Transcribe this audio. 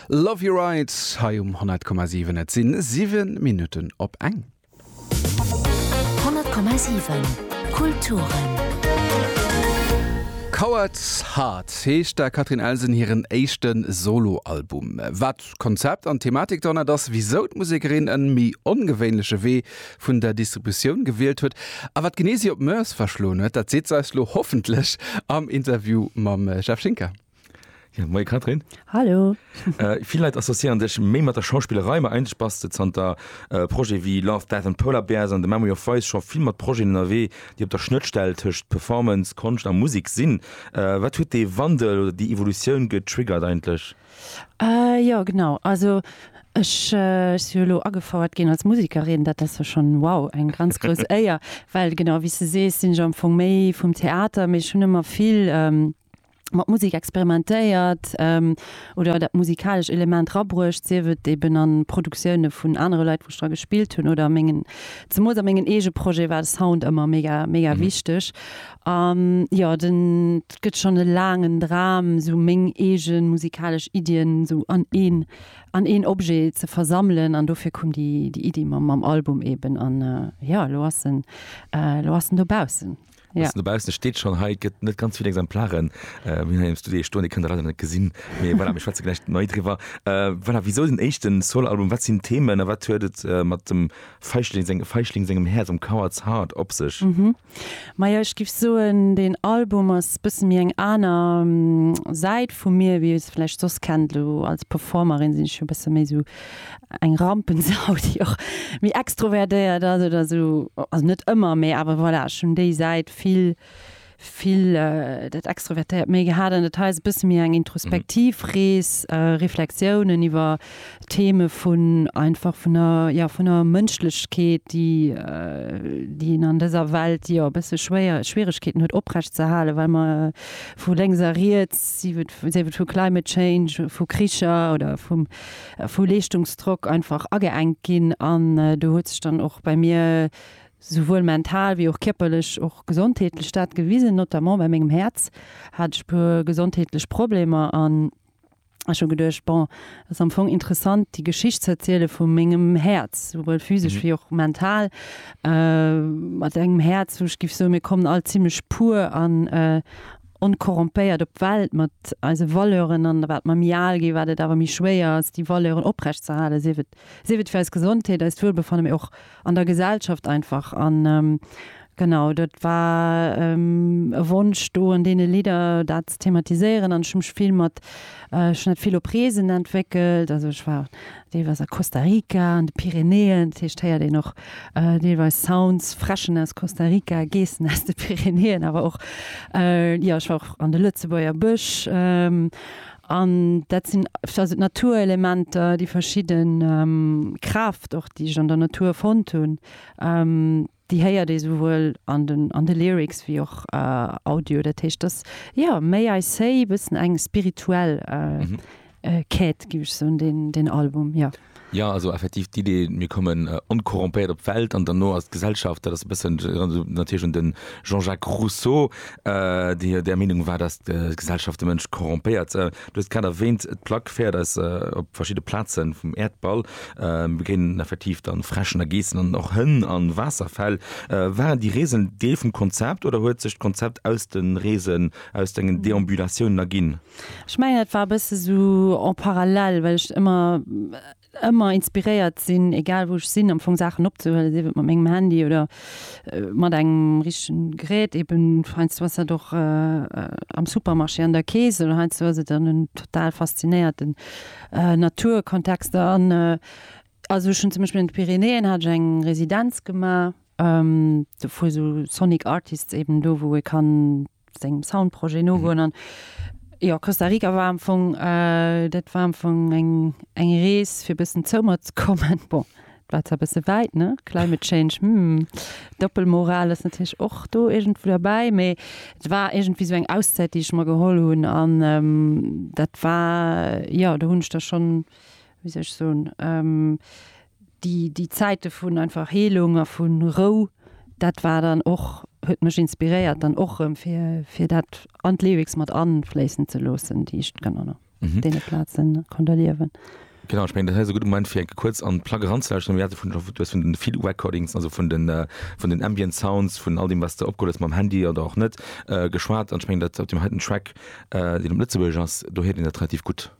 Love your rides hei um 100,7. Et sinn 7 Minutten op eng. 100,7 Kulturen. Coward Heart heescht der Catherine Elsen hiren éischte Solo-Album. Wat D'Konzept an d'Thematik dohannert ass, wisou d'Musekerin en méi ongewéinleche Wee vun der Distributioun gewielt huet a wat genee si op d'Mœurs verschloen huet, dat seet se eis lo hoffentlech am Interview mam Jeff Schinker. Jo, moie Catherine. Hallo. Vill Leit associéieren dech méi mat der Schauspillerei, ma eigentlech bass de zanter Projete wéi Love, Death and Polar Bears an The Memory of Vice scho vill mat Projeten ënnerwee, déi op der Schnëttstell tëscht Performance, Konscht a Musek sinn. Wat huet dee Wandel oder déi Evolutioun getriggert eigentlech? Jo genau, also ech si jo elo agefouert ginn als Musekerin, dat ass jo schonn, wow, eng ganz grouss Éier, well genau wéi s de sees, sinn ech am Fong méi vum Theater, mee ech hunn ëmmer vill mat Musek experimentéiert oder dat musikalescht Element erabruecht, sief et eben a Produktioune vun anere Leit, wou ech dra gespillt hunn oder a mengen, zemools a mengen eege Projeten war de Sound ëmmer mega, mega wichteg. An jo, den gëtt schonn e laangen Dram, sou meng eegen musikalesch Iddien sou an een an een Objet ze versammelen. An dofir koum déi déi Iddi mam mam Album eben. An jo, elo ass en elo ass en dobaussen. Elo ass en dobaussen, e steet schonn hei, gëtt net ganz vill Exemplaren wéi hei am Studio ee stoen. Dir kënnt e leider net gesinn, mee voilà, mir schwätze gläich méi driwwer. Voilà, wisou den éischten Soloalbum, wat sinn d'Themen a wat huet et mat dem Feischling seng Feischling sengem Häerz, mam Coward's Heart op sech? Maja ech giff soen deen Album ass bëssen méi eng aner Säit vu mir wéi iers vläicht soss kennt. Lo als Performerin sinn ech jo bësse méi sou eng Rampensau déi och méi extrovertéiert ass oder sou, also net ëmmer mee awer voilà ech hunn déi Säit vill vill dat extrovertéiert méi gehat an dat hei ass e bësse méi eng introspektiv Rees, Reflexiounen iwwer. Theme vun einfach vun der, jo, vun der Mënschlechkeet, déi, déi een an dëser Welt, jo, e bësse schwéier, Schwieregkeeten huet oprecht ze halen, well mer vu lénks a riets, sief et, sief et vu Climate Change, vu Kricher oder vum, vu Leeschtungsdrock einfach ageenkt ginn. An do huet sech dann och bei mir souwuel mental wéi och kierperlech, och gesondheetlech dat gewisen. Notamment bei mengem Häerz hat ech e puer gesondheetlech Problemer an Ech hu geduecht, bon, et ass am Fong interessant, déi Geschicht ze erziele vu mengem Häerz, souwuel physesch wéi och mental. Mat engem Häerz, wou ech géif soen, mir kommen all zimmlech pur an onkorrompéiert op d'Welt, mat eise Valeuren. An wat mer méi al ginn, wat et awer méi schwéier ass, déi Valeuren oprecht ze halen, sief et fir eis Gesondheet, eist Wuelbefanne, mee och an der Gesellschaft einfach an genau dat war e Wonsch do an deene Lidder dat ze thematiséieren an ech hu mech vill mat ech hunn dat vill op Reesen entwéckelt, also ech war deelweis a Costa Rica, an de Pyrenäen, dat heescht héiert een och deelweis Sounds, Fräschen aus Costa Rica, Geessen aus de Pyrenäen, awer och jo ech war och an de Lëtzebuerger Bësch An dat sinn also d'Naturelementer, déi verschidde Kraaft och, déi ech an der Natur fonnt hunn, déi héiert ee souwuel an den, an de Lyrics wéi och Audio. Dat heescht, dass, jo, May I Say e bëssen eng spirituell Quête, géif ech soen, deen Album, jo. Jo, also effektiv d'Idee, mir kommen onkorrompéiert op d'Welt an derno ass d'Gesellschaft, dat ass e bëssen, erënnert esou natierlech un de Jean-Jacques Rousseau, dee jo där Meenung war, datt d'Gesellschaft de Mënsch korrompéiert. Du hues grad erwäänt, d'Plack féiert eis op verschidde Plaze vum Äerdball. Mir begéinen effektiv da Fräschen a Geessen an och Hënn a Waasserfäll. Waren déi Reesen en Deel vum Konzept oder huet sech d'Konzept aus de Reesen, aus dengen Deambulatiounen erginn? Ech mengen et war e bësse sou en parallèle, well ech ëmmer ëmmer inspiréiert sinn, egal wou ech sinn, am Fong Saachen opzehuelen, sief et mat mengem Handy oder mat engem richtegen Gerät. Eben heiansdo ass dat och am Supermarché an der Kees oder heiansdo ass et an en total faszinéierten Naturkontexter. An also ech hunn zum Beispill an de Pyrenäen hat ech eng Residenz gemaach, do fu sou Sonic Artists eben do wou ee kann sengem Soundprojet nogoen an jo Costa Rica war am Fong äh, dat war am Fong eng eng Rees fir bëssen zoumer ze kommen. Bon, dat war zwar bësse wäit, ne? Climate Change, hm, Doppelmoral ass natierlech och do iergendwou derbäi, mee et war iergendwéi esou eng Auszäit déi ech mer geholl hunn an ähm, dat war, jo do hunn ech da schonn, wéi soll ech soen, ähm, déi déi Zäite vun einfach Heelung a vu Rou, dat war dann och huet mech inspiréiert dann och erëm fir fir dat an d'Lyrics mat afléissen ze loossen, déi ech dann an deene Plazen konnt erliewen. Genau, ech mengen dat hei ass e gudde Moment fir enke kuerz an d'Plack eranzelauschteren. Mir hate vun du hues vun den Field Recordings, also vun den vun den Ambient Sounds, vun all deem wat s de opgeholl hues mam Handy oder och net geschwat an ech mengen dat op deem heiten Track, deen op Lëtzebuergesch ass, do héiert een dat relativ gutt.